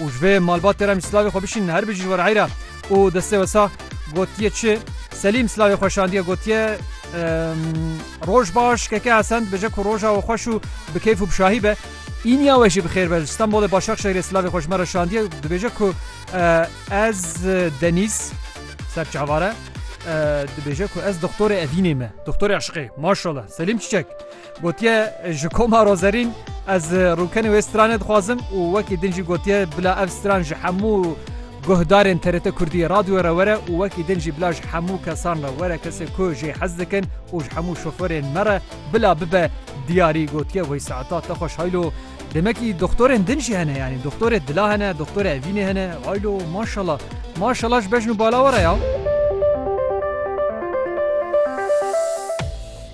Û ji vê malbatê re em jî silavê xwe bişînin her bijî ji we re heyr e. Û destê we sax gotiye çi? Selîm silavê xwe şandiye gotiye Roj baş keke Hesen dibêje ku roja we xweş û bi keyf û bi şahî be. Îniya we jî bi xêr be ji Stenbolê Başakşehîrê silavê xwe ji me re şandiye dibêje ku ez Denîz ser çavare dibêje ku ez doxtorê Evînê me doxtorê eşqê maşallah Selîm Çiçek. Gotiye ji Komaro Zerîn ez rûkenê wê stranê dixwazim û wekî din jî gotiye bila ev stran ji hemû guhdarên TRT Kurdî radyo re were û wekî din jî bila ji hemû kesan re were kesê ku jê hez dikin û ji hemû şoferên me re bila bibe diyarî gotiye wey saeta te xweş haylo demekî doxtorên din jî hene yanî doxtorê dila hene doxtorê evînê hene haylo maşala maşala ji bejn û bala were ya.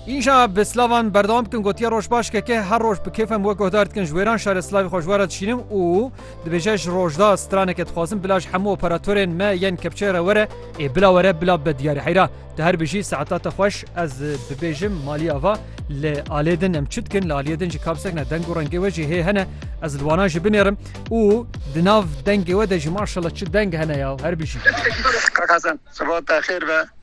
Îja bi silavan berdewam dikin gotiye roj baş KK her roj bi kêfem we guhdar dikin ji wêran şerê silavê xwe ji we re dişînim û dibêje ji rojda straneke dixwazim bila ji hemû operatorên me yên kepçeyê re were ê bila were bila bibe diyarê heyra tu her bijî saeta te xweş ez bibêjim malî ava li alê din em çi dikin li aliyê din jî kapsek ne deng û rengê we jî hê hene ez li wana jî binêrim û di nav dengê we de jî maşallah çi deng hene ya her bijî Kak Hasan, sibat te xêr be.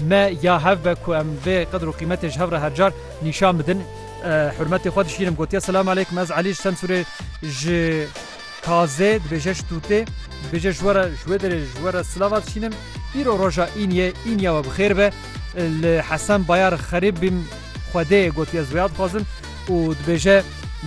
Me ya hev be ku em vê qedr û qîmetê ji hev re her car nîşan bidin. Hurmetê xwe dişînim gotiye Selam aleykum ez Elî ji Semsûrê ji Kazê dibêje ji Tûtê dibêje ji we re ji wê derê ji we re silava dişînim. Îro roja Îniyê Îniya we bi xêr be. Li Hesen Bayar xerîb bîm Xwedê gotiye ez wêya dixwazim û dibêje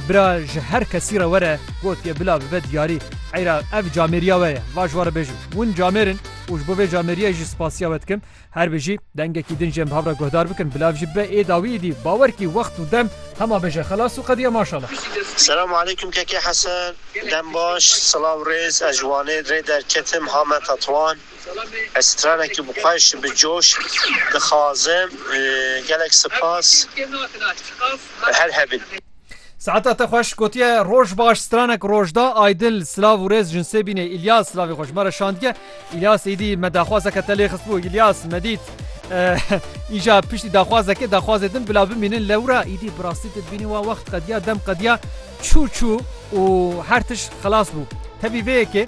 Bira ji her kesî re were gotiye bila bibe diyarî. Eyra ev camêriya we ye. Va ji we re bêjim. Win camêr in. û ji bo vê cameriyê jî spasiya we dikim. Her bi jî dengekî din ji em bi hev re guhdar bikin. Bila ev jî bibe ê dawî êdî. Bawer kî wext û dem hema beje xelas û qediya maşala. Selam aleyküm Keke Hesen dem baş silav rêz ez ji Wanê rê derketim ha me Tetwan ez stranekî bi xweş bi coş dixazim gelek sipas her hebin. Saeta te xweş gotiye roj baş stranek roj da aydil silav û rêz jinsê bînê İlyas silavê xweş me re şandiye İlyas êdî me daxwazeke te lê xistbû İlyas me dît îja piştî daxwazekê daxwazê din bila bimînin lewra êdî bi rastî te bînî wa wext qediya dem qediya çû çû û her tişt xilas bû tevî vê yekê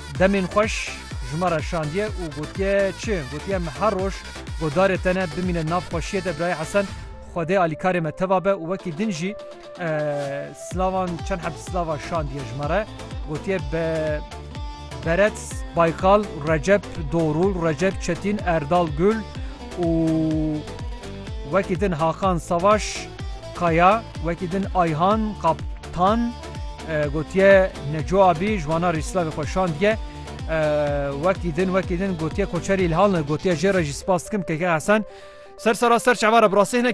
Demên xweş ji me re şandiye û gotiye çi? Gotiye em her roj godarê te ne bimînin nav xweşiyê de Birayê Hesen Xwedê alîkarê me teva be û wekî din jî silavan û çend heb silava şandiye ji me re gotiye be Beret Baykal, Recep Dorul, Recep Çetin, Erdal Gul û wekî din Hakan Savaş Kaya, wekî din Ayhan Kaptan. Gotiye Neco Abî ji wana Rîslavê xwe şandiye. Wekî din wekî din gotiye koçerî li hal ne. Gotiye jê re jî spas dikim KK Hesen. Ser sera ser çavara bi rastî hinek